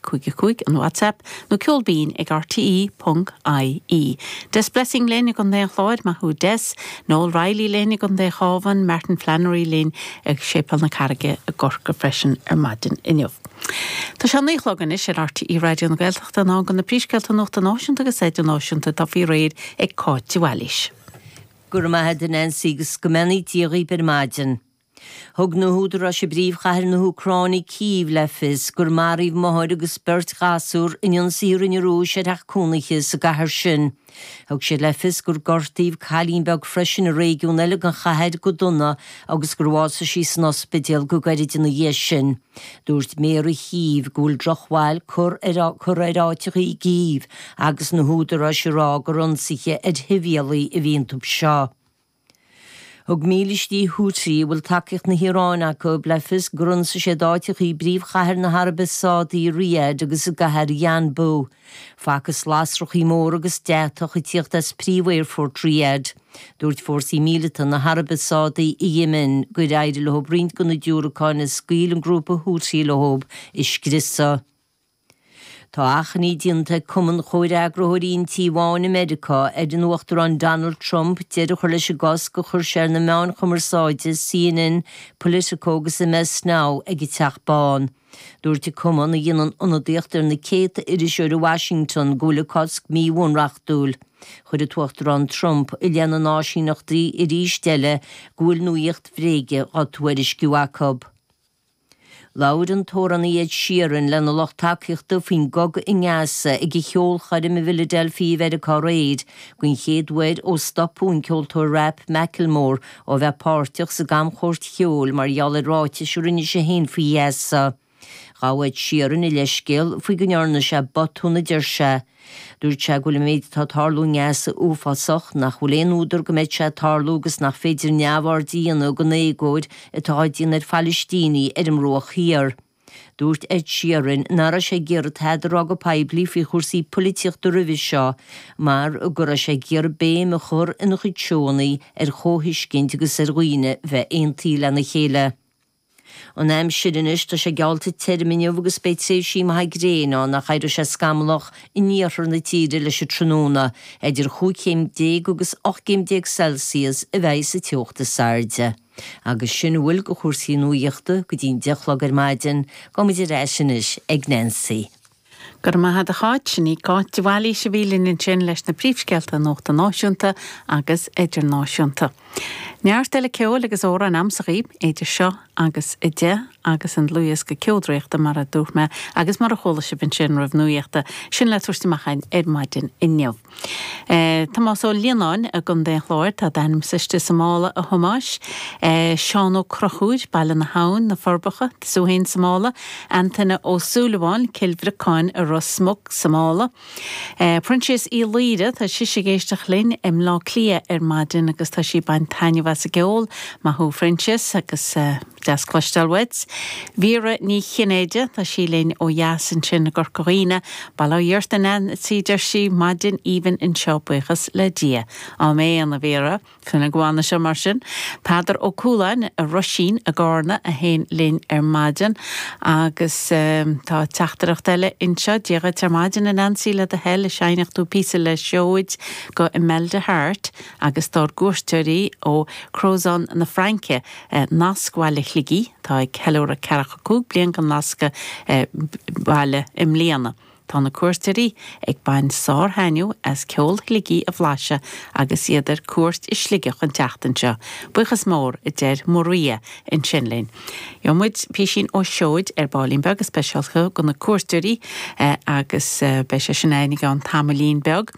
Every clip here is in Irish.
5555 an WhatsApp nó Ceol Binn ag RTÉ.ie. Des Blessing linn i gContae an Chláir, maith thú Des, Noel Reilly linn i gContae Chábhan, Martin Flannery linn ag Séipéal na Carraige i gCorcaigh freisin ar maidin inniu. Tá sé a naoi a chlog anois ar RTÉ Raidió na Gaeltachta, in am do na príomhscéalta nuachta náisiúnta agus idirnáisiúnta atá faoi réir ag Cáit de Bhailís. Go raibh maith a'd a Nancy agus go mbeannaí Dia dhaoib ar maidin. Thug na húdaráis i bpríomhchathair na hÚcráine, Cív, le fios gur maraíodh máthair agus beirt ghasúr in ionsaí a rinne an Rúis ar theach cónaithe sa gcathair sin. Thug siad le fios gur gortaíodh cailín beag freisin i réigiún eile den chathair go dona agus gur bhásaigh sí san ospidéal go gairid ina dhiaidh sin. Dúirt Méara Chív go bhfuil drochbhail curtha ar áiteacha i gCív agus na húdaráis ag rá gur ionsaithe ar shibhialtaigh a bhí iontu seo. Thug mílístí Houthi, a bhfuil tacaíocht na hIaráine acu, le fios gur ionsaigh siad áiteacha i bpríomhchathair na hAraibe Sádaí, Riyadh, agus i gcathair Yanbu. Facthas lasrachaí móra agus deatach ag tíocht as príomhaerfort Riyadh. Dúirt fórsaí míleata na hAraibe Sádaí i Yemen gur éirigh leo roinnt de na diúracáin a scaoil an grúpa Houthi leo a scriosadh. Tá achainí déanta ag Cumann Chomhfhreagraitheoirí an Tí Bháin i Meiriceá ar an Uachtarán Donald Trump deireadh a chur leis an gcosc a chuir sé ar na meáin chumarsáide CNN, Politico agus MS Now ag an Teach Bán. Dúirt an cumann, a dhéanann ionadaíocht ar na céadta iriseoir i Washington, go bhfuil an cosc míbhunreachtúil. Chuir an tUachtarán Trump i leith na n-áisíneachtaí arís eile go bhfuil nuacht bhréige á tuairisciú acu. Labhair an t-amhránaí Ed Sheeran lena lucht tacaíochta faoin gcogadh i nGaza ag a cheolchoirm i bhFiladelfia i Meiriceá aréir den chéad uair ó stopadh an ceoltóir rap Macklemore ó bheith páirteach sa gcamchuairt cheoil mar gheall ar ráiteas a rinne sé féin faoi Ghaza. Ghabh Ed Sheeran a leithscéal faoi go ndearna sé botúin a deir sé. Dúirt sé go bhfuil an méid atá ag tarlú i nGaza uafásach, nach bhfuil aon údar go mbeadh sé ag tarlú agus nach féidir neamhaird a dhéanamh den éagóir atá á déanamh ar Phalaistínigh ar an mBruach Thiar. Dúirt Ed Sheeran nach raibh sé ag iarraidh tada a rá go poiblí faoi chúrsaí polaitíochta roimhe seo mar go raibh sé ag iarraidh béim a chur ina chuid seónna ar chomhthuiscint agus ar dhaoine a bheith aontaithe lena chéile. An aimsir anois, tá sé geallta tirim inniu agus beidh tréimhsí maithe gréine ann ach éireoidh sé scamallach in iarthar na tíre leis an tráthnóna. Idir cúig chéim déag agus ocht gcéim déag Celsius a bheidh sa teocht is airde. Agus sin a bhfuil de chúrsaí nuachta go dtí an deich a chlog ar maidin, gabhfaidh muid ar ais anois ag Nancy. Go raibh maith a't, a Cháit. Sin í Cáit de Bhailís a bhí linn ansin leis na príomhscéalta nuachta náisiúnta agus idirnáisiúnta. Neart eile ceoil agus amhráin amsa dhaoibh, idir seo agus a deich, agus an dlúthdhiosca Ceol Draíochta mar a dúirt mé, agus mar a chuala sibh ansin roimh an nuaíocht, sin le tabhairt amach againn ar maidin inniu. Tomás Ó Lionnáin i gContae an Chláir, tá d'ainm sáite sa mála, a Thomáis. Seán Ó Conchúir, Baile na hAbhann, Na Forbacha, tú fhéin sa mála. Antaine Ó Súilleabháin, Cill Bhriocáin i Ros Muc, sa mála. Proinsias Uí Laoire, tá sise ag éisteacht linn i mBleá Cliath ar maidin, tá sí ag baint taitneamh as an gceol. Maith thú a Phroinsias agus. Deas cloisteáil uait. Myra Ní Chinnéide, tá sí linn ó dheas ansin i gCorca Dhuibhne. Bail ó Dhia ort a Neansaí a deir sí, maidin aoibhinn anseo buíochas le Dia. Áiméan, a Mhyra. Go bhfana seo mar sin. Peadar Ó Cúláin i Roisín i gCárna tú féin linn ar maidin. Agus tá teachtaireacht eile anseo, Dia dhuit ar maidin a Neansaí le do thoil an seinnfeadh tú píosa le Seoid do Imelda Harte agus dár gcuairteoirí ó Crozon na Fraince Nasc Bhaile Shligigh, atá ag ceiliúradh ceathracha is cúig bliain de nascadh baile i mbliana. Tá na cuairteoirí ag baint sár-thaitneamh as ceol Shligigh a bhlaiseadh agus iad ar cuairt i Sligeach an tseachtain seo. Buíochas mór, a deir Maria ansin linn. Gheobhaidh muid písín ó Seoid ar baillín beag speisialta do na cuairteoirí agus beidh sé sin againn i gceann tamaillín beag.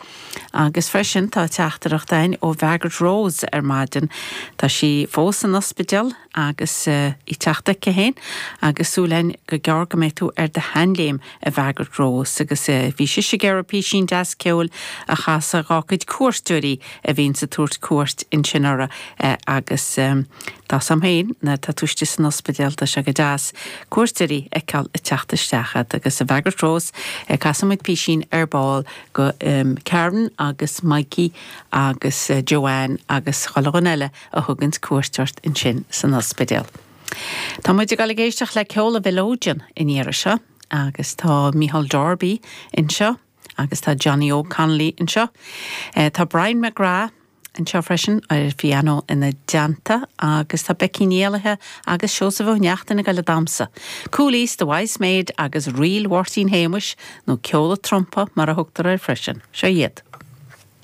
Agus freisin tá teachtaireacht againn ó Mhargaret Rose ar maidin. Tá sí fós san ospidéal agus í ag teacht chuici féin agus súil againn go gearr go mbeidh tú ar do shean-léim, a Mhargaret Rose. Agus bhí sise ag iarraidh písín deas ceoil a chasadh dhá cuid cuairteoirí a bhíonns ag tabhairt cuairt ansin uirthi. Agus tá's agam féin, nuair atá tú istigh san ospidéal, tá sé go deas cuairteoirí a fheiceáil ag teacht isteach agat. Agus a Mhargaret Rose, casfaidh muid písín ar ball do Karen agus Mikey agus Joanne agus chuile dhuine eile a thuganns cuairt ort ansin san ospidéal. Tá muid ag dul ag éisteacht le ceol an mhileoidin an iarraidh seo agus tá Micheál Darby anseo agus tá Johnny Óg Connolly anseo. Tá Brian McGrath. Anseo freisin ar an bpianó ina dteannta agus tá Becky Ní Éallaithe agus Seosamh Ó Neachtain ag goil ag damhsa, Cooley's, The Wise Maid agus Ríl Mháirtín Shéamuis, nó Ceol a' Trumpa mar a thugtar air freisin. Seo iad.